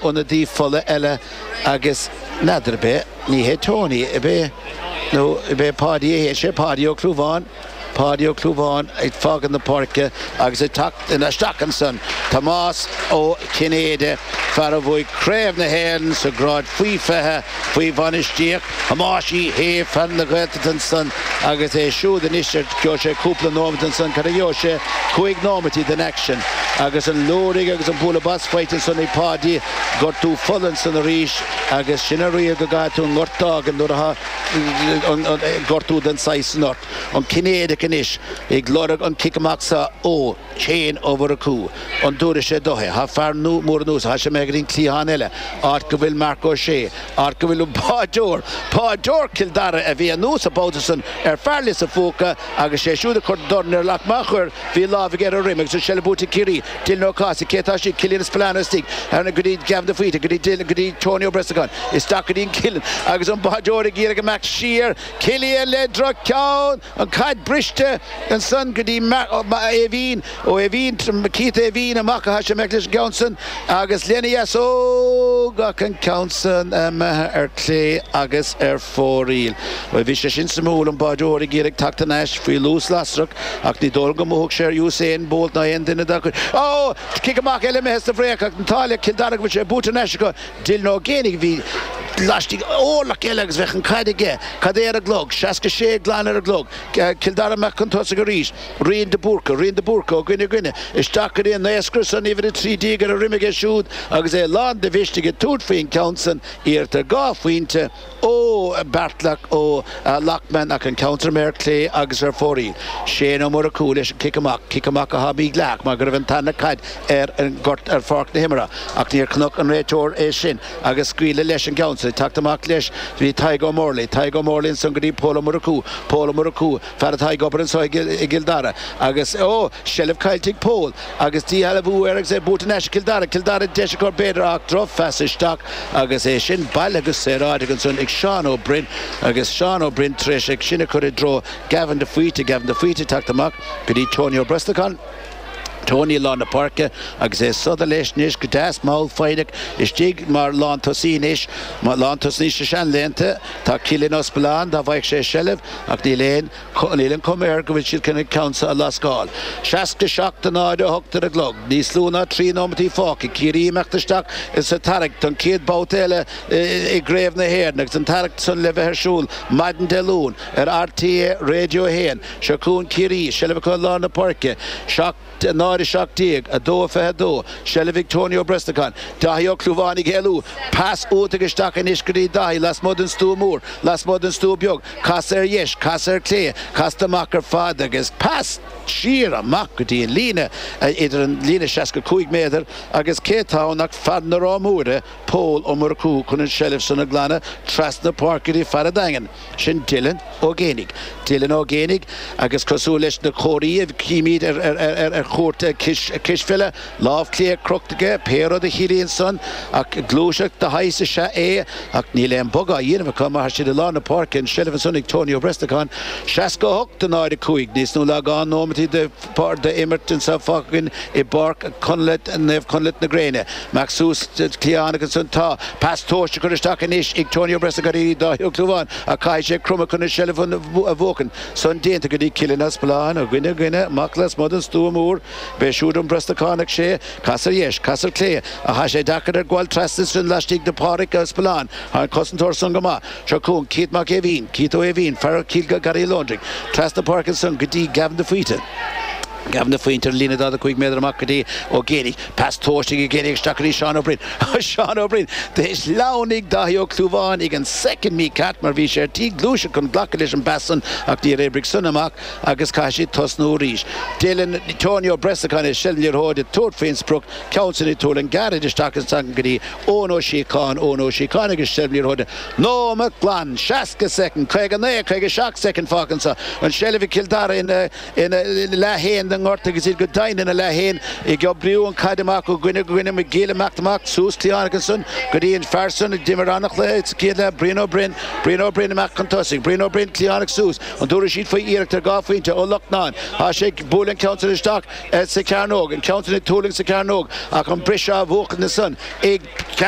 ionadaí fola eile agus n'fheadar ab é, ní hé Tony, ab é? nó ab é Páidí, a hé sé Páidí Ó Clúmháin, Páidí Ó Clúmháin ag fágaint na páirce agus ag teacht in a isteach ansan, Tomás Ó Cinnéide, fear a bhuaidh Craobh na hÉireann sa grád faoi fiche faoi bhainistíocht. Thomáis Uí Shé, fear na Gaeltachta ansan agus é siúd anois ar, gheobhaidh sé cúpla nóimeat ansan, cad a gheobhaidh sé, cúig nóimití den action. Agus an liúirigh agus an bualadh bos faighte ansan ag Páidí, gortú fola ansan arís agus sin an riail go gcaithfidh tú an gort d'fhágaint nuair atá gortú den saghas san ort. An Cinnéideach anois ag lorg an cic amach seo ó. Cian de Búrca. An dtabharfaidh sé dó é? Tá fear mór anuas air, tá sé imithe go dtí an cliathán eile, áit go bhfuil Marc Ó Sé, áit go bhfuil an peileadóir, peileadóir Cill Dara a bhí anuas an babhta san ar fear Lios a' Phúca agus sé siúd a chuir dorn air ach má chuir, bhí a lámh aige ar a dhroim agus an seilbh buaite ag Ciarraí, Dylan Ó Cathasaigh, cé tá istigh, Cillian Spillane istigh, thar na, go dtí Gavin de Faoite, go dtí Dylan, go dtí Tony Ó Brosnacháin, isteach go dtí an Cillian agus an báireoir ag iarraidh imeacht siar, Cillian le drochcheann! An caid briste ansan go dtí Mac Éimhín, Ó hÉimhín, Keith Éimhín, amach, tá sé imithe leis an gceann san, agus lena dheasóg ach an ceann san imithe ar clé agus ar fóraoil. Bhuel bhí sé sin suimiúil, an báireoir ag iarraidh teacht thar n-ais faoi luas lasrach, ach ní dóigh liom go mbuafadh sé ar Usain Bolt ná aon duine acu. Ó! Cic amach eile imithe sa break, ach an t-ádh le Cill Dara, go bhfuil sé buaite thar n-ais acu. Dylan Ó Géibheannaigh a bhí laistigh d'órlach eile agus bheadh an caid aige. Cad é ar an gclog? Seasca sé glan ar an gclog. Cill Dara amach cun tosaigh arís. Riain de Búrca. Riain de Búrca. Ó goine goine. Isteach go dtí an naoscaire san uimhir a trí déag ar a dhroim aige siúd agus é lán de mhisneach ag tabhairt faoi an gceann san. Iarracht ar dhá phointe. Ó Beartlack Ó Loakman ach an ceann san imithe ar clé agus ar fóraoil. Shane Ó Murchú leis an cic amach, cic amach a sháith Míc Leach mar go raibh an tarna caid ar an ngort ar pháirc na himeartha ach níor chonaic an réiteoir é sin agus scaoileadh leis an gceann ag teacht amach leis bhí Tadhg Ó Morlaigh, Tadhg Ó Morlaigh ansan go dtí Pól Ó Murchú, Pól Ó Murchú, fear atá ag obair anso i gCill Dara agus, ó! seilbh caillte ag Pól. Agus díshealbhú air agus é buaite thar n-ais ag Cill Dara, Cill Dara deis acu b'fhéidir ach droch-phas isteach agus é sin bailithe go saoráideach ansan ag Seán Ó Broin agus Seán Ó Broin tar éis é sin a chur i dtreo Gavin de Faoite, Gavin de Faoite teacht amach go dtí Tony Ó Brosnacháin, Tony i lár na páirce agus é ag sodar leis anois go deas mall foighneach istigh mar lántosaí anois, lántosaí sna seanlaethanta, tá Cillian Spillane dá bhfaigheadh sé seilbh ach níl aon. Níl an chuma air go bhfuil siad chun an ceann seo a lascáil. 67 a 0 a hocht ar an gclog. Níos lú ná trí nóimeataí fágtha. Ciarraí ag imeacht isteach ins an tarraingt don chéad babhta eile i gCraobh na hÉireann agus an tarraingt san le bheith ar siúl maidin Dé Luain ar RTÉ Raidió 1. Seo chugainn Ciarraí. Seilbh acu i lár na páirce. náid a 17, 2:22, Seilbh ag Tony Ó Brosnacháin, Daithí Ó Clúmháin ag éalú, pas uaidh agus isteach anois go dtí Daithí lasmuigh den stua mór, lasmuigh den stua beag, casadh ar dheis, casadh ar chlé, casadh amach ar fad agus pas! siar amach go dtí an líne, idir an líne seasca cúig méadar agus cé tá ann ach fear na Rátha Móire, Pól Ó Murchú chun an seilbh san a ghlanadh trasna páirce go dtí fear a' Daingin. Sin Dylan Ó Géinigh. Dylan Ó Géinigh agus cosúil leis na comharthaí a chímid ar chúirt cispheile, lámh chlé crochta aige, pé rud a chiallaíonn san ach gluaiseacht de shaghas is ea é, ach níl aon bhogadh á dhéanamh acu mar tá siad i lár na páirce, an seilbh ansan ag Tony Ó Brosnacháin, 68 náid a cúig, níos lú ná dhá nóimeat de. Páirc do imirt anso fágtha againn i bPáirc Conleth, Naomh Conleth na Gréine. Amach suas cliathán agus ansan tá pas tomhaiste á chur isteach anois ag Tony Ó Brosna go dtí Dáithí Ó Clúmháin ach caithfidh sé cromadh chun an seilbh a bhuachaint. San déanta go dtí Cillian Ó Spealáin, ó dhuine go duine, amach lasmuigh don stua mór. B'é siúd an Brosnachánach sé. Cas ar dheis, cas ar clé. Ach tá sé deacair air gabháil trasna ansan laistigh de Pádraic Ó Spealáin. Tá an cosantóir san go maith. Seo chugainn Keith Mac Éimhín, Keith Ó hÉimhín, fear Chill Gharraí an Londraigh trasna páirce ansan go dtí Gavin de Faoite, Gavin de Faoite ar an líne 45 méadar amach go dtí Ó Géinigh, pas tomhaiste ag Ó Géinigh isteach go dtí Seán Ó Broin, Seán Ó Broin d'Inis Leamhnaigh, Dáithí Ó Clúmháin ag an soicind mícheart mar bhí sé ar tí gluaiseacht chun glacadh leis an bpas san ach níor oibrigh san amach agus caithfidh siad tosnú arís. Dylan, Tony Ó Brosnacháin i seilbh na liathróide ag tabhairt faoin sprioc, ceann san ag tuirlingt gairid isteach ansan go dtí Eoin Ó Síocháin, Eoin Ó Síocháin agus seilbh na liathróide nóimeat glan, 60 soicind, 59, 57 soicind fágtha anso, an tseilbh ag Cill Dara ina, ina, leath fhéin den ngort agus iad go deimhin ina leath fhéin ag oibríú an caid amach ó dhuine go duine, McGill imeacht amach suas cliathánach ansan go dtí an fear san a d'imir an-chluiche sa chéad leath, Brian Ó Broin, Brian Ó Broin imeacht chun tosaigh, Brian Ó Broin cliathánach suas, an dtabharfaidh siad faoi iarracht ar dhá phointe Ó Lochnáin, tá sé ag, buaileann ceann san isteach, sa Chearnóg, an ceann san ag tuirlingt sa Chearnóg, ach an briseadh á bhuachaint ansan, i.